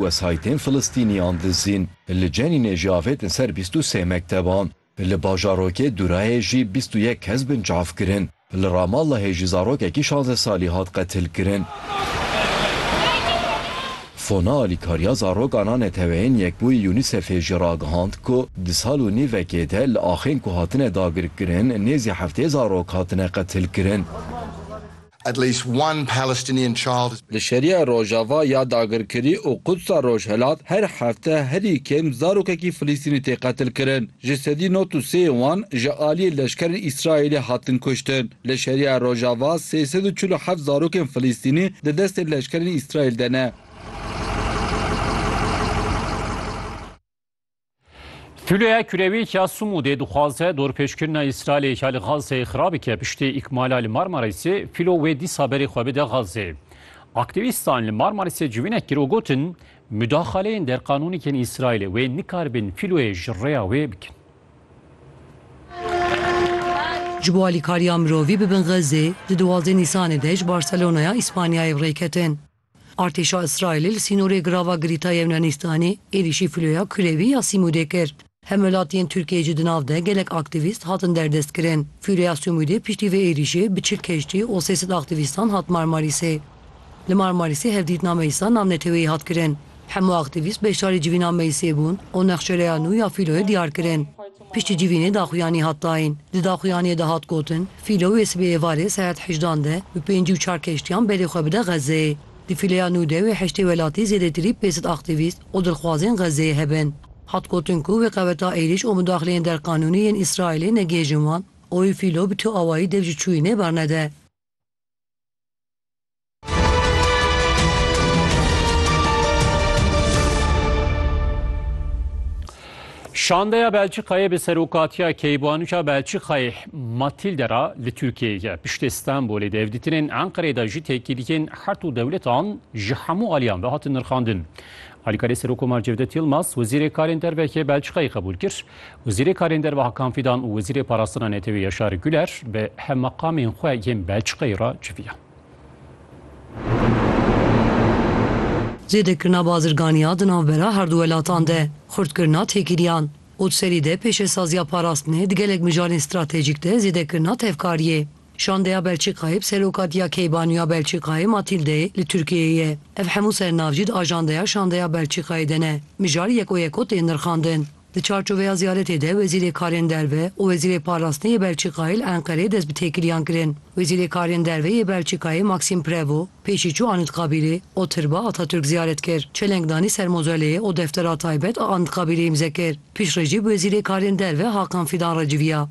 Wesayîtên Filistîniyan dizîn li Cenînê jî avêtin ser bîst û sê mekteban. Li bajarokê Durayê jî bîst û yek kes bin çavkirin. Li Ramallahê jî zarokekî şanze salî hat qetilkirin. Fona alîkariya zarokan a Neteweyên Yekbûyî UNICEF'ê jî ragihand ku di sal û nîvekê de li axên ku hatine dagirkirin nêzî heftê zarok hatine qetilkirin. At least one Palestinian child has been. Li Şeriya Rojava ya dagirkirî û Qudsa Rojhilat her hefte herî kêm zarokekî Filistînî tê qetilkirin. Ji sedî nod û sê wan ji aliyê leşkerên Îsraîlê hatin kuştin. Li Şeriya Rojava sê sed û çil û heft zarokên Filistînî di destên leşkerên Îsraîl de ne. Filoya kurewî ya Sumûdê dixwaze dorpêçkirina Îsraîlê ya li Xazzeyê xirab bike piştî îkmala li Marmarîsê fîlo wê dîsa berê xwe bide Xazzeyê. Aktîvîstan li Marmarîsê civînek kir û gotin mudaxaleyên derqanûnî yên Îsraîlê wê nikaribin fîloyê ji rêya wê bikin. Ji bo alîkariya mirovî bibin Xazzeyê, di duwazdeh Nîsanê de ji Barselonaya Îspanyayê bi rê ketin. Artêşa Îsraîlê li sînorê Girava Girîta Yewnanîstanê êrîşî filoya kulevî ya Sîmûdê kir. Hemwelatiyên Tirkiyeyê jî di nav de gelek aktîvîst hatin derdestkirin. Filoya Sîmûdê piştî vê êrîşê bi çil keştî û sê sed aktîvîstan hat Marmarîsê. Li Marmarîsê hevdîtina meclisa navneteweyî hat kirin. Hemû aktîvîst beşdarî civîna meclisê bûn û nexşereya nû ya filoyê diyar kirin. Piştî civînê daxuyanî hat dayîn. Di daxuyaniyê de hat gotin, Fîlo wê sibê êvarê saet hejdan de bi pêncî û çar keştiyan belê xwe bide Xezeyê. Di fîleya nû de wê heştê welatî zêdetirî pênc sed aktîvîst û dilxwazên Xezeyê hebin. Hat gotin ku wê qeweta êrîş û mudaxileyên derqanûnî yên Îsraîlê negihêjin wan û wê Fîlo bi tu awayî dev ji çûyînê bernede. Şandeya Belçîkayê bi serokatiya Keybanûça Belçîkayê Matilde ra li Tirkiyeyê ye. Piştê Stenbolê di hevdîtinên Enqereyê de jî têkîliyên her du dewletan ji hemû aliyan ve hatin nirxandin. Alîkarê Serokkomar Cevdet Yilmaz, Wezîrê Karên Derve yê Belçîkayê qebûl kir. Wezîrê Karên Derve Hakan Fîdan û Wezîrê Parastina Netewê Yaşar Güler bi hevmeqamên xwe yên Belçîkayê re civiyan. Zêdekirina bazirganiya di navbera herdu welatan de, xurtkirina têkiliyan û di serî de pêşesaziya parastinê di gelek mijarên stratejîk de zêdekirina tevkariyê, Şandeya Belçîkayê bi serokatiya Keybaniya Belçîkayê Matîldeyê li Tirkiyeyê ye. Ev hemû sernav jî di ajandeya Şandeya Belçîkayê de ne. Mijar yeko yeko tên nirxandin. Di çarçoveya ziyaretê de Wezîrê Karên Derve û Wezîrê Parastinê yê Belçîkayê li Enqereyê dest bi têkiliyan kirin. Wezîrê Karên Derve yê Belçîkayê Maxime Prevot pêşî çû Anıtkabirê û Tirba Atatürk ziyaret kir. Çeleng danî ser mozoleyê û deftera taybet a Anıtkabirê îmze kir. Piştre jî bi Wezîrê Karên Derve Hakan Fidan re civiya.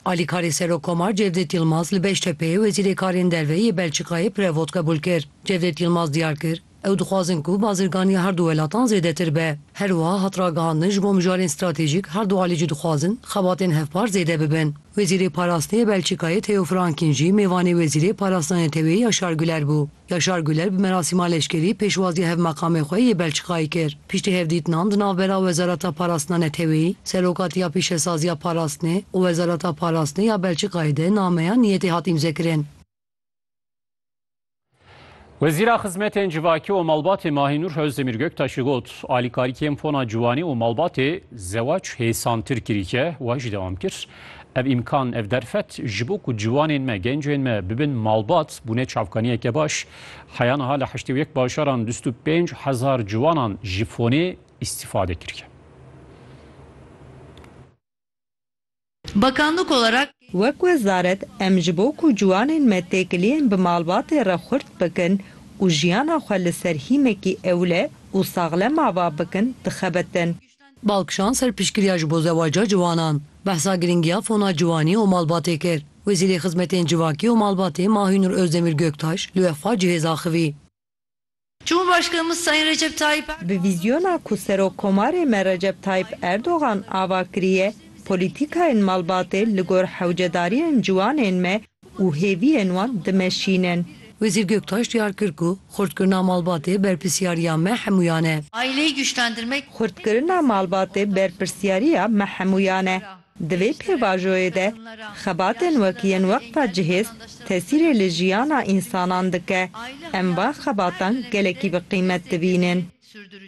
Alîkarê Serokkomar Cevdet Yilmaz li Beştepeyê Wezîrê Karên Derve yê Belçîkayê Prevot qebûl kir. Cevdet Yilmaz diyar kir, Ew dixwazin ku bazirganiya her du welatan zêdetir be. Her wiha hat ragihandin ji bo mijarên stratejîk her du alî jî dixwazin xebatên hevpar zêde bibin. Wezîrê Parastinê yê Belçîkayê Theo Frankin jî mêvanê Wezîrê Parastina Neteweyê Yaşar Güler bû. Yaşar Güler bi merasîma leşkerî pêşwaziya hevmeqamê xwe yê Belçîkayê kir. Piştî hevdîtinan di navbera Wezareta Parastina Neteweyî, Serokatî ya Pîşesaziya Parastinê û Wezareta Parastinê ya Belçîkayê de nameya niyetê hat îmzekirin. Wezîra Xizmetên Civakî û Malbatê Mahînûr Ozdemîr Göktaşî got, Alîkarî kêm fona ciwanî û malbatê zewac hêsantir kirî ke wa jî dewam kir. Ev îmkan, ev derfet ji bo ku ciwanên me, gencên me bibin malbat bûne çavkaniyeke baş. Heya niha li heştê û yek bajaran dust û pênc hezar ciwanan ji fonê îstîfade kiriye. Bakanlık olarak. Wek wezaret em ji bo ku ciwanên me têkiliyên bi malbatê re xurt bikin û jiyana xwe li ser hîmekî ewle û saxlem ava bikin dixebitin. Balkişan ser piştgiriya ji bo zewaca ciwanan, behsa girîngiya fona ciwanî û malbatê kir. Wezîrê Xizmetên Civakî û Malbatê Mahînur Ozdemîr Göktaş li we xwe cihêz axivî. Cumhurbaşkanımız Sayın Recep Tayyip Erdoğan, Bi vîzyona ku Serok Komarê me Recep Tayyip Erdoğan ava kiriye, polîtîkayên malbatê li gor hewcedariyên ciwanên me û hêviyên wan dimeşînin. Wezîr Göktaş diyar kir ku xurtkirina malbatê berpirsyariya me hemûyan e. Aileyi güçlendirmek Xurtkirina malbatê berpirsyariya me hemûyan e. Di vê pêvajoyê de xebatên wek yên Weqfa Cihêz tesîrê li jiyana însanan dike. Em van xebatan gelekî bi qîmet dibînin.